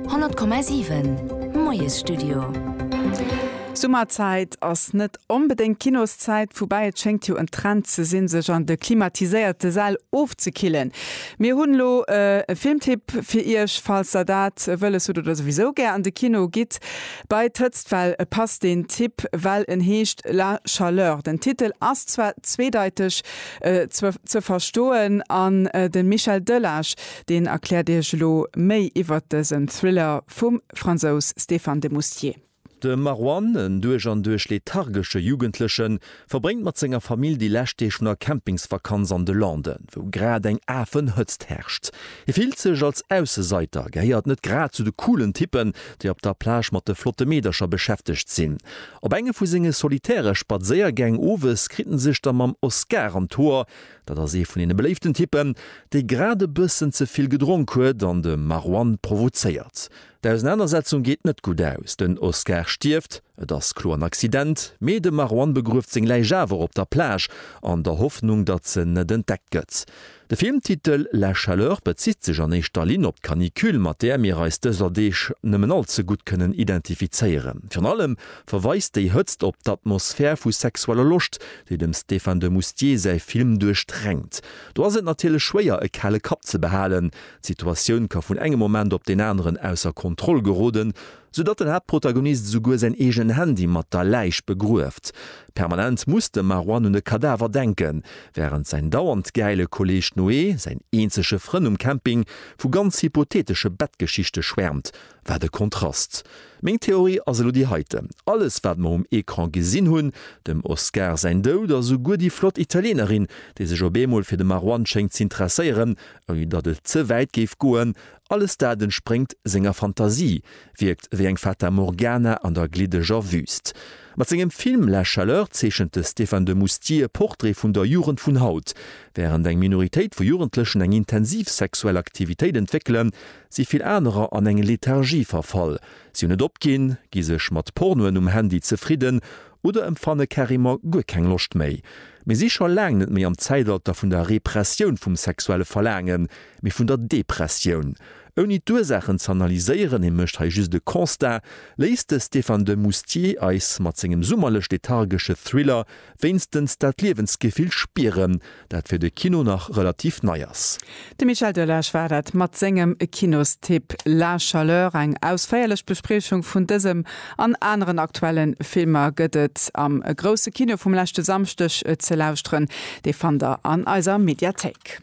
100,7 Moies Studio Summerzäit ass net onbedéngt Kinoszäit, woubäi et schéngt jo en Trend ze sinn, sech an de klimatiséierte Säll ofzekillen. Mir hunn elo e Filmtipp fir Iech, falls der dat wëlles hutt oder souwisou gär an de Kino gitt bei d'Hëtztwell. E passt deen Tipp, well en heescht La Chaleur. Den Titel ass zwar zweedeiteg ze verstoen an de Michel Delage, deen erkläert Iech elo méi iwwert dësen Thriller vum Fransous Stéphane de Moustier. De Marwan, en duerch an duerch lethargesche Jugendlechen, verbréngt mat senger Famill déi lescht Deeg vun der Campingsvakanz an de Landen, wou grad eng Afenhëtzt herrscht. Hie fillt sech als Ausseseiter, gehéiert net grad zu de coolen Typpen, déi op der Plage mat de flotte Meedercher beschäftegt sinn. Op enge vu senge solitäre Spadséiergäng owes kritt en sech da mam Oscar an d'Hoer, Dat ass ee vun deene beléiften Typpen, dee grad e bëssen ze vill gedronk huet an de Marwan provozéiert. D'Ausenanersetzung geet net gutt aus, den Oscar stierft, et ass kloer en Accident, mee de Marwan begrueft seng Läich awer op der Plage, an der Hoffnung, datt se net entdeckt gëtt. De Filmtitel La chaleur bezitt sech an éischter Linn op d'Canicule, mat där mir eis dëser Deeg nëmmen all ze gutt kënnen identifizéieren. Virun allem verweist déi Hëtzt op d'Atmosphär vu sexueller Loscht, déi dem Stéphane de Moustier säi Film duerchdrängt. Do ass et natierlech schwéier e kale Kapp ze behalen, d'Situatioun ka vun engem Moment op deen aneren ausser Kontroll geroden, sou datt den Haaptprotagonist esouguer säin eegenen Handy mat der Läich begrueft. Permanent muss de Marouane un e Kadaver denken, wärend säin dauernd gäile Kolleeg Noé, säin eenzege Frënn um Camping, vu ganz hypotheetesche Bettgeschichte schwäermt, Wat e Kontrast! Meng Theorie ass elo déi heiten, Alles wat mer um Ecran gesinn hunn, dem Oscar säin Doud a souguer déi flott Italienerin, déi sech op eemol fir de Marwan schéngt z'interesséieren, ouni datt et ze wäit géif goen, alles dat entspréngt senger Fantasie, wierkt wéi eng Fata Morgana an der gliddeger Wüüst. Mat sengem Film La Chaleur zeechent de Stéphane de Moustier e Portrait vun der Jugend vun haut. Wärend eng Minoritéit vu Jugendlechen eng intensiv sexuell Aktivitéit entwéckelen, si vill anerer an eng Lethargie verfall, si hunn et opginn, gi sech mat Pornoen um Handy zefridden oder empfanne carrément guer keng Loscht méi. Mir si scho laang net méi am Zäitalter vun der Repressioun vum sexuelle Verlaangen, mee vun der Depressioun. Ouni d'Ursaachen ze analyséieren, hie mécht hei just e Constat, léisst de Stéphane de Moustier eis mat sengem summerlech-lethargesche Thriller wéinstens dat Liewensgefill spieren, dat fir de Kino nach relativ nei ass. De Michel Delage war dat mat sengem Kinostipp La Chaleur. Eng ausféierlech Bespriechung vun dësem an aneren aktuelle Filmer gëtt et am Grousse Kino vum leschte Samschdeg ze lauschteren. Dee fannt der an eiser Mediathéik.